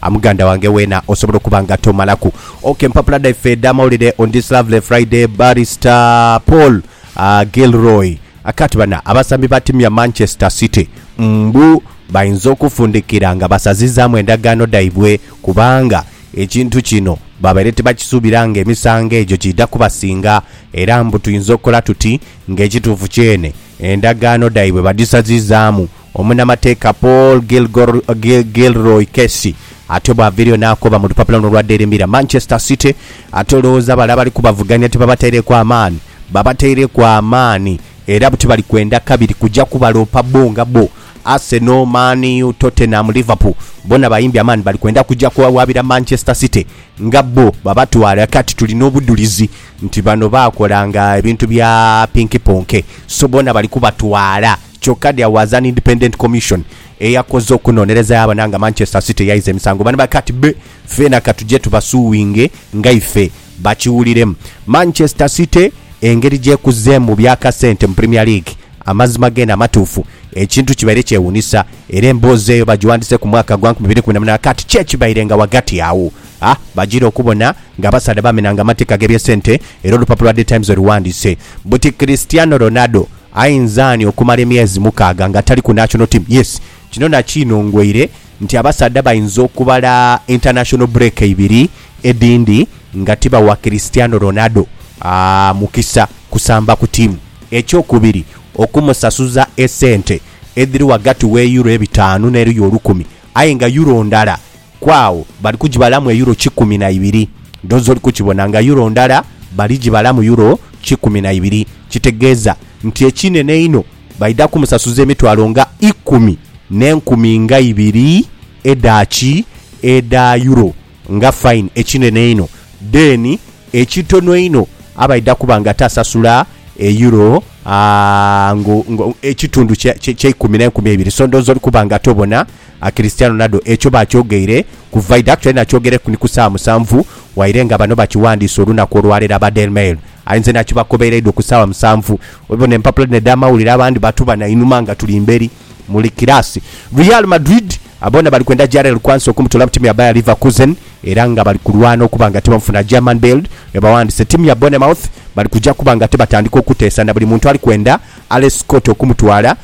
A Muganda wange weena osobola okuba nga tomalaku ok empapula dhaife edh'amawulire on this lovely Friday Barrister Paul Gilroy akka ati bana abasambi ba tiimu ya Manchester City mbu bainza okufundikira nga basazizaamu endagaano dhaibwe kubanga ekintu kino babaire tibakisuubira nga emisango egyo giidha kubasinga era mbu tuinza okukola tuti nga ekituufu kyene endagaano dhaibwe badhisazizaamu Omunamateeka Paul Gilroy Casey atyo bw'aviireyo n'akoba mu lupapula luno olwa Daily Mirror, Manchester City ate olowooza bale abali kubavugania tibabataireku amaani? Babataireku amaani era buti bali kwenda kabiri kuja kubaloopa bbo nga bbo. Arsenal, Man U, Tottenham, Liverpool bona bayimbye amaani bali kwenda kuja kuwawaabira Manchester City nga bbo babatwale. Kati tulina obudhulizi nti bano baakolanga ebintu bya pinkiponke so bona bali kubatwala. Kyoka there was an independent commission eyakoze okunonereza yabona nga Manchester City yaiza emisango bano bakati be feena katuje tubasuwinge nga ife bakiwuliremu. Manchester City engeri gyekuzeemu mu bya kasente mu Premier League amazima geene amatuufu ekintu kibaire kyewunisa era emboozi eyo bagiwandise ku mwaka gwa nkumi biri kumi na munaana kati kye kibaire nga wagati agho a bagira okubona nga abasaadha bamenanga amateeka ge bye sente era olupapula lwa The Times oluwandise buti Cristiano Ronaldo Ayinza ani okumala emyezi mukaaga nga tali ku national team? Yes, kino nakiinongoire nti abasaadha bayinza okubala international break ibiri edhindi nga tibawa Cristiano Ronaldo mukisa kusamba ku tiimu. Ekyokubiri, okumusasuza esente edhiri ghagati w'eyuro ebitaanu n'eruyi olukumi aye nga yuro ndala Ku agho bali kugibalamu eyuro kikumi na ibiri. Dhoozi oli kukibona nga yuro ndala, baligibalamu yuro kikumi na ibiri. Kitegeeza nti ekinene einho baidha kumusasuza emitwalo nga ikumi n'enkumi nga ibiri edha ki? Edha yuro, nga fine ekinene einho. Then ekitono einho abaidha kuba nga tasasula eyuro nga ekitundu kya eikumi n'enkumi eibiri. So ndhooza oli kuba nga tobona. A Cristiano Ronaldo ekyo baakyogeire ku Vaida aye naakyogereku ni ku saawa musanvu waire nga bano bakiwandiise olunaku olwaleero aba Daily Mail aye nze naakibakobeireidho ku saawa musanvu. Obibona empapula dhino edh'amawulire abandi batuba na inhuma nga tuli mberi muli kiraasi. Real Madrid boona bali kwenda Jarell Quansah okumutoola mu tiimu ya Bayer Leverkusen era nga bali kulwana okuba nga tibamufuna. German Bild ebawandiise tiimu ya Bournemouth bali kuja kuba nga tibatandika okuteesa na buli muntu ali kwenda Alex Scott okumutwala.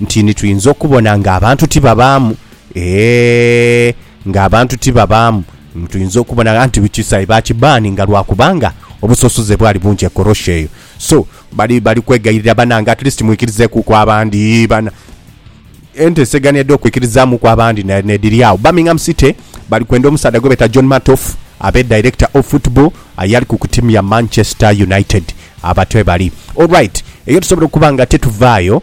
nti ni twinza okubona nga abantu ti babaamu, eeh, nga abantu ti babaamu, ni twinza okubona gha nti Kisayi baakibbaani nga lwa kubanga obusosoze bwali bungi e Korosho eyo. So, bali, bali kwegayirira, Banange, at least mwikirizeekuuku abandi, bana. Enteesegana edh'okwikirizaamuuku abandi na, n'edhiri agho. Birmingham City bali kwenda omusaadha gwe beeta John Matoff, abe director of football, aye ali ku ku tiimu ya Manchester United. Abo batyo bwe bali. All right, eyo tusobola okuba nga tituvaayo.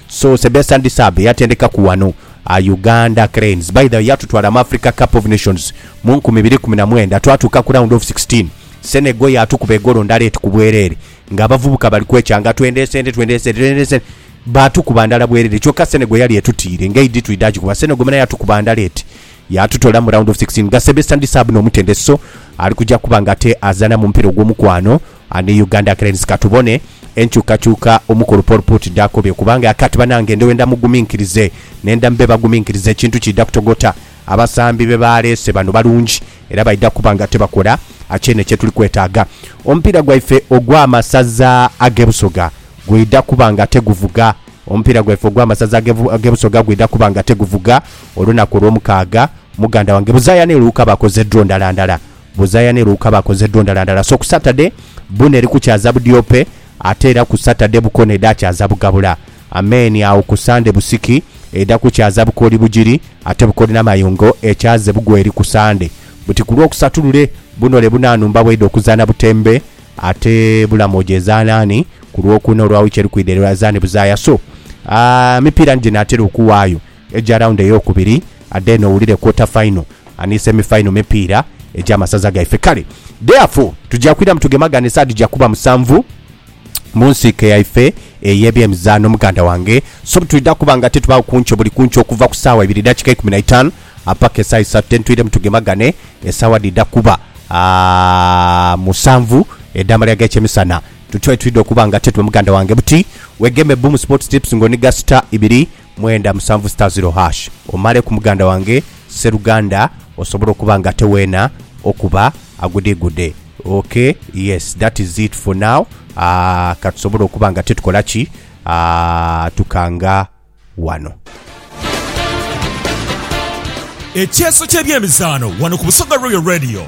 So Sebastien Desabre yatendeka ku wano a Uganda Cranes. By the way yatutwala mu Africa Cup of Nations mu nkumi ibiri kumi na mwenda twatuuka ku round of sixteen. Senegal yaatukuba egolo ndala eti ku bwerere nga abavubuka bali kwekya nga twendeese ente twendeese ente twendeese ente baatukuba ndala bwerere kyoka Senegal yali etutiire nga eidhi twidha agikuba. Senegal muna yatukuba ndala eti yaatutola mu round of sixteen nga Sebastien Desabre n'omutendesi so ali kuja kuba nga ate azaana mu mupira ogw'omukwano. Ani Uganda Cranes ka tubone enkyukakyuka omukulu Paul Put dhaakobye kubanga akati banange ndhewenda muguminkirize nendha mube baguminkiriza ekintu kiidha kutogota. Abasambi be baaleese bano balungi era baidha kuba nga tebakola kyene kyetuli kwetaaga. Omupiira gwaife ogw'amasaza ag'e Busoga gwidha kuba nga teguvuga Omupiira gwaife ogw'amasaza ag'e Busoga gwidha kuba nga teguvuga olunaku Olwomukaaga. Muganda wange buzaaya ni Luuka bakoze draw ndala ndala Buzaya ni Luka bakoze dho ndala ndala. So ku Satade, Buna eri kukyaza Budyope, ate era ku Satade, Bukona edha kyaza Bugabula. Amen. Agho ku Sande, Busiki edha kukyaza Bukoli Bugiri, ate Bukoli Namayungo ekyaze Bugweri ku Sande. Buti ku Lwokusatu lule, Bunole Buna Numba bwedha okuzaana Butembe, ate Bulamoja ezaana ani? Ku Lwokuna olwa wiiki eri kwidha erazaane Buzaya. So, aa, emipiira ni gye naatera okuwaayo. Eja round eyokubiri adheene owulire quarter final ani semi final mipiira eja masaza gaife kale therefore tuja kwiramu tugemagane saadi ja kuba musanvu mu nsiike yaife eye bye mizaano muganda wange so bwetwidha kuba nga titubagho ku nkyo buli ku nkyo okuva ku saawa ibiri dakika eikumi na itaanu apaka esaawa isatu then twiremu tugemagane esaawa dhidha kuba aah musanvu edha malira ge kye misana tuti wetwidha okuba nga tetuba muganda wange buti wegeme Boom Sports Tips nga oniga star ibiri mwenda musanvu sita ziro hash omale ku muganda wange seruganda osobole okuba nga ate wena okuba agudigude ok yes that is it for now aah katusobole okuba nga ate tukola ki aah tukanga wano. Ekyeeso ky'ebyemizaano wano ku Busoga Royal Radio.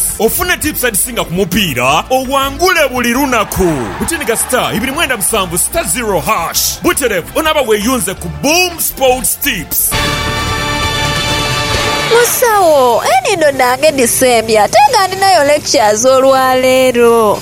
Ofune tips edhisinga ku mupiira owangule buli lunaku. Butiniga star ibiri mwenda musanvu star zero hash buterevu onaaba weeyunze ku Boom Sports Tips. Musawo, enhindo dhange dhisembye ate nga ndhinayo lectures olwaleero.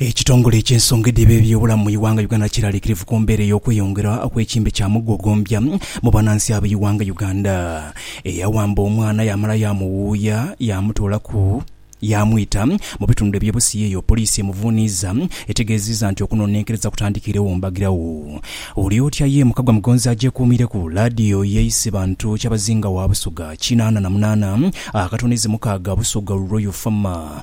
Ekitongole eky'ensonga edheba eby'obulamu mu Iwanga Uganda kiralikirivu ku mbeera ey'okweyongera okw'ekimbe kya mugogoombya mu banansi aba Iwanga Uganda. Eyawamba omwana yamala yamuwuuya yamutoolaku yamwita mu bitundu eby'e Busia eyo poliisi emuvuuniiza etegeeziiza nti okunonenkereza kutandikiiregho mbagirawo. Oli otya ye Mukagwa Mugonzi agyekuumireku laadiyo ye Isebantu Kyabazinga wa Busoga kinaana na munaana akatono izi mukaaga Busoga Ruroyo Fama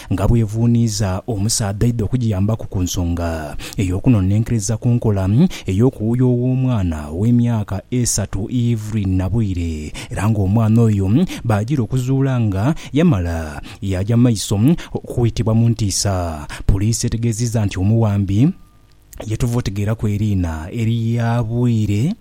nga bwevuuniiza omusaadha aidha okugiyambaku ku nsonga ey'okunonenkereza ku nkola ey'okuwuya ow'omwana ow'emyaka esatu Evelyn Nabwire era nga omwana oyo baagira okuzuula nga yamala yaaja mu maiso okwitibwa mu ntiisa. Puliisi etegeezizza nti omuwambi ye tuva otegeeraku eriina erya Bwire,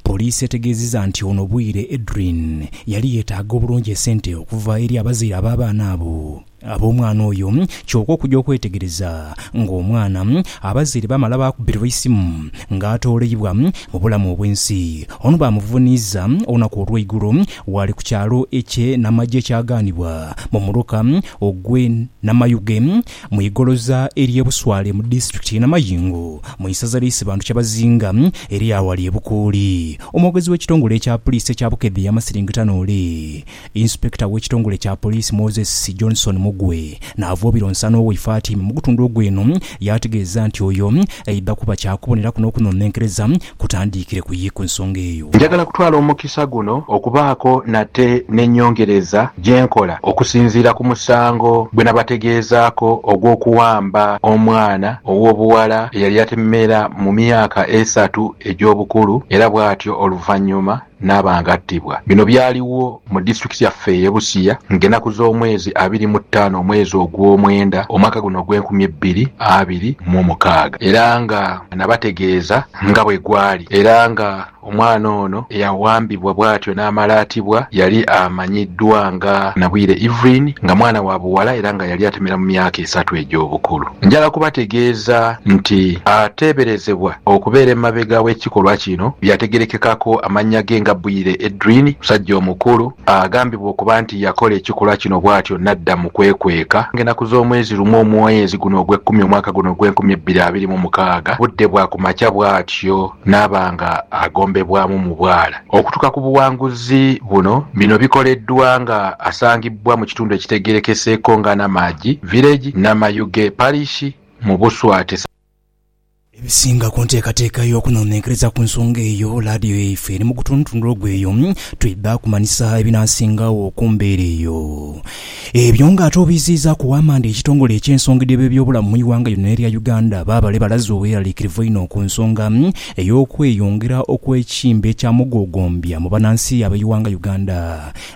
Poliisi etegeezezza nti ono Bwire Edrine yali yeetaaga obulungi esente okuva eri abazaire ab'abaana abo ab'omwana oyo kyoka okugya okwetegereza ng'omwana abazaire baamala baakubirwa eisimu ng'atooleibwa mu bulamu obw'ensi ono baamuvuniiza olunaku olw'eigulo waali ku kyalo ekye Namagye kyagaanibwa mu muluka ogw'e Namayuge Mu igoloza ery'e Buswale mu disitulikiti y'e Namayingo mu isaza lya Isibantu Kyabazinga eriri aghali e Bukuuli, omwogezi w'ekitongole kya puliisi ekya Bukedde yamasiringita noole Inspector w'ekitongole kya poliisi Moses Johnson Mugwe n'avoobira onsano owe Ifatimah mu gutundu ogw'eno yaategeeza nti oyo aidha kuba kyakuboneraku n'okunonenkereza kutandiikire ku ye ku nsonga eyo. Njagala kutwala omukisa guno okubaako nate n'ennyongereza gye nkola okusinziira ku musango gwe nabategeezaako ogw'okuwamba omwana ow'obuwala eyali atemeera mu myaka esatu egy'obukulu era bwatyo oluvannyuma, naaba nga attibwa. Bino byaligho mu disiturikiti yaffe eye Busia nga enaku z'omwezi abiri mu taano omwezi ogw'omwenda omwaka guno ogw'enkumi ebbiri abiri mu mukaaga era nga nabategeeza nga bwegwali era nga omwana ono eyawambibwa bwatyo naamala atibwa yali amanyiddwa nga Nabwire Evelyn nga mwana wa buwala era nga yali atemera mu myaka esatu egy'obukulu. Njala kubategeeza nti ateeberezebwa okubeera emabega w'ekikolwa kino yategerekekako amannya ge nga Bwire Edrine, musajja omukulu agambibwa okuba nti yakola ekikolwa kino bwatyo nadda mu kwekweka ng'enaku z'omwezi lumu omwezi guno ogw'ekkumi omwaka guno ogw'enkumi ebbiri abiri mu mukaaga budde bwa kumakya bwatyo naaba nga agombebwamu mu bwala. Okutuka ku buwanguzi buno bino bikoleddwa nga asangibbwa mu kitundu ekitegerekeseeko nga Namagi Village, Namayuge Parish mu Buswati. Ebisinga ku nteekateeka y'okunonenkereza ku nsonga eyo, laadiyo yaife eri mu gutundutundu ogweyo, twidha kumanyisa ebinaasingagho ku mbeera eyo. Ebyo nga ate obiiziizaaku wamande ekitongole eky'ensonga dh'eby'ebyobulamu mu ighanga lino erya Uganda baabale balaze obweraliikirivu einho ku nsonga ey'okweyongera okw'ekimbe eky'amugoogombya mu banansi ab'eighanga Uganda.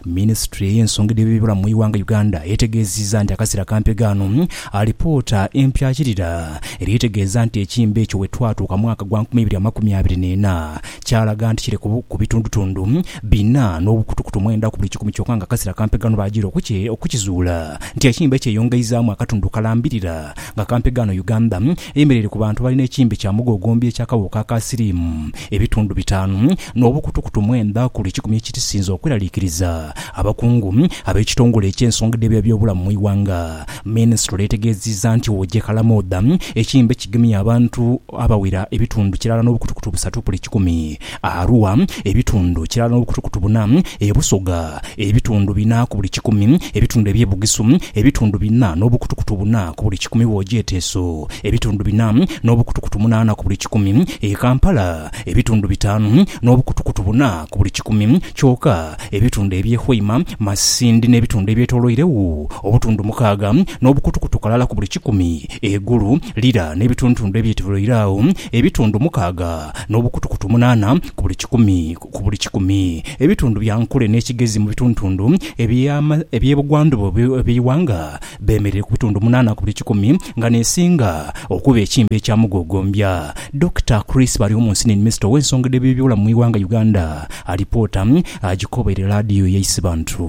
Minisitule ey'ensonga edh'eby'ebyobulamu mu ighanga Uganda etegeeziza nti akaseera kampi ghano alipoota empyakirira eri etegeeza nti ekimbe ekyo wetwatuuka mwaka gwa nkumi ibiri amakumi abiri n'ena Kyalaga nti kiri ku bitundutundu bina n'obukutukutu mwenda ku buli kikumi kyoka nga akasira kampe ghano baagira okukizuula nti ekimbe kyeyongeizaamu akatundu kalambirira nga kampe ghano Uganda eyemereire ku bantu abalina ekimbe kya mugogombi eky'akawuuka aka siriimu ebitundu bitaanu n'obukutukutu mwenda ku buli kikumi ekirisinze okweraliikiriza abakungu ab'ekitongole eky'ensonga dh'eby'ebyobulamu mu ighanga. Minisitule etegeeziza nti wogyekalamu oda ekimbe kigemye abantu Abawira ebitundu kirala n'obukutukutu busatu buli kikumi, Arua ebitundu kirala n'obukutukutu buna, e Busoga ebitundu bina ku buli kikumi, ebitundu eby'e Bugisu ebitundu bina n'obukutukutu buna ku buli kikumi bw'ogyeteeso ebitundu bina n'obukutukutu munaana ku buli kikumi, e Kampala ebitundu bitaanu n'obukutukutu buna ku buli kikumi kyoka, ebitundu eby'e Hoima, Masindi n'ebitundu ebyetoloiregho obutundu mukaaga n'obukutukutu kalala ku buli kikumi. Eigulu lira n'ebitundutundu ebyetoloire agho, ebitundu mukaaga n'obukutukutu munaana ku buli kikumi ku buli kikumi. Ebitundu bya nkule n'ekigezi mu bitundutundu eby'ebugwandhuba obw'eighanga beemereire ku bitundu munaana ku buli kikumi, nga n'esinga okuba ekimbe ekya mugogombya. Dokita Chris Baryomunsi ni Minisita ow'ensonga edh'eby'ebyobulamu mu ighanga Uganda. Alipoota agikobeire laadiyo ya Isibantu.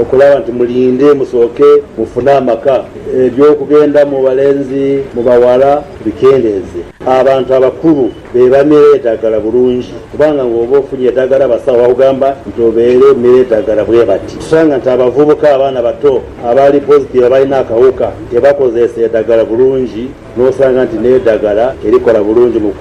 Okulaba nti mulinde musooke mufune amaka, eby'okugenda mu balenzi mu baghala bikendeeze. Abantu abakulu be bamira edagala bulungi kubanga ng'oba ofunye edagala abasawo bakugamba nti obeere omira edagala bwe bati. Tusanga nti abavubuka, abaana abato abali positive abalina akawuka tebakozeesa edagala bulungi n'osanga nti n'edagala terikola bulungi mu.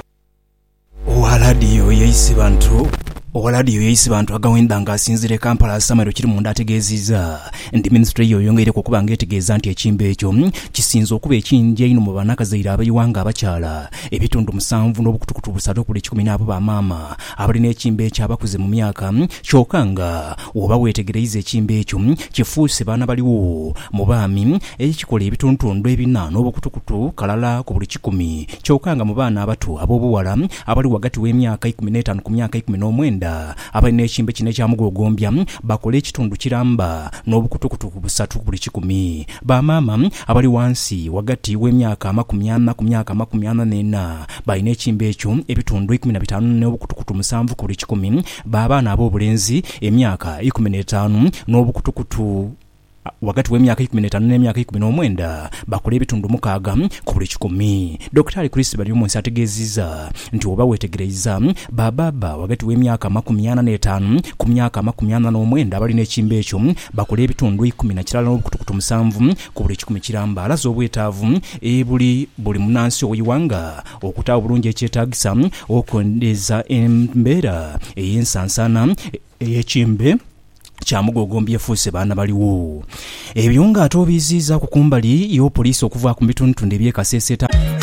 Owa laadiyo ya Isibantu Agawenda nga asinziira e Kampala, Samuel Kirimunda ategeezizza nti minisitule ye eyongeireku okuba nga etegeeza nti ekyimbe ekyo kisinze okuba ekingi einho mu banakazaire abaiwa nga abakyala ebitundu musanvu n'obukutukutu busatu okuli ekikumi n'abo ba maama abali n'ekyimbe ekyo abakuze mu myaka kyoka nga woba wetegereiza ekyimbe ekyo kifuuse baana baliwo mu baami ekikola ebituntundu ebina n'obukutukutu kalala ku buli kikumi kyoka nga mu baana abato ab'obughala abali ghagati w'emyaka eikumi n'etaanu ku myaka eikumi n'omwenda abali n'ekimbe kino ekya mugogoombya bakola ekitundu kiramba n'obukutukutu busatu ku buli kikumi. Ba maama abali ghansi ghagati w'emyaka amakumi ana ku myaka amakumi ana n'ena balina ekimbe ekyo ebitundu eikumi na bitaanu n'obukutukutu musanvu ku buli kikumi. Ba baana ab'obulenzi emyaka eikumi n'etaanu n'obukutukutu. ghagati w'emyaka eikumi n'etaanu n'emyaka eikumi n'omwenda bakula ebitundu mukaaga ku buli kikumi. Dokitaali Chris Baryomunsi ategeezizza nti bw'oba weetegereiza, ba baaba ghagati w'emyaka amakumi ana n'etaanu ku myaka amakumi ana n'omwenda abalina ekiimba ekyo bakula ebitundu eikumi na kirala n'obukutukutu musanvu ku buli kikumi kiramba. Alaze obwetaavu ebuli buli munnansi ow'eighanga okutaawo obulungi ekyetaagisa okwendeza embeera ey'ensansaana ey'ekiimba. kya mugogo mbyefuuse baana baligho. Ebyo nga ate obiiziizaaku ku mbali y'opoliisi okuva ku bitundutundu eby'e Kasese,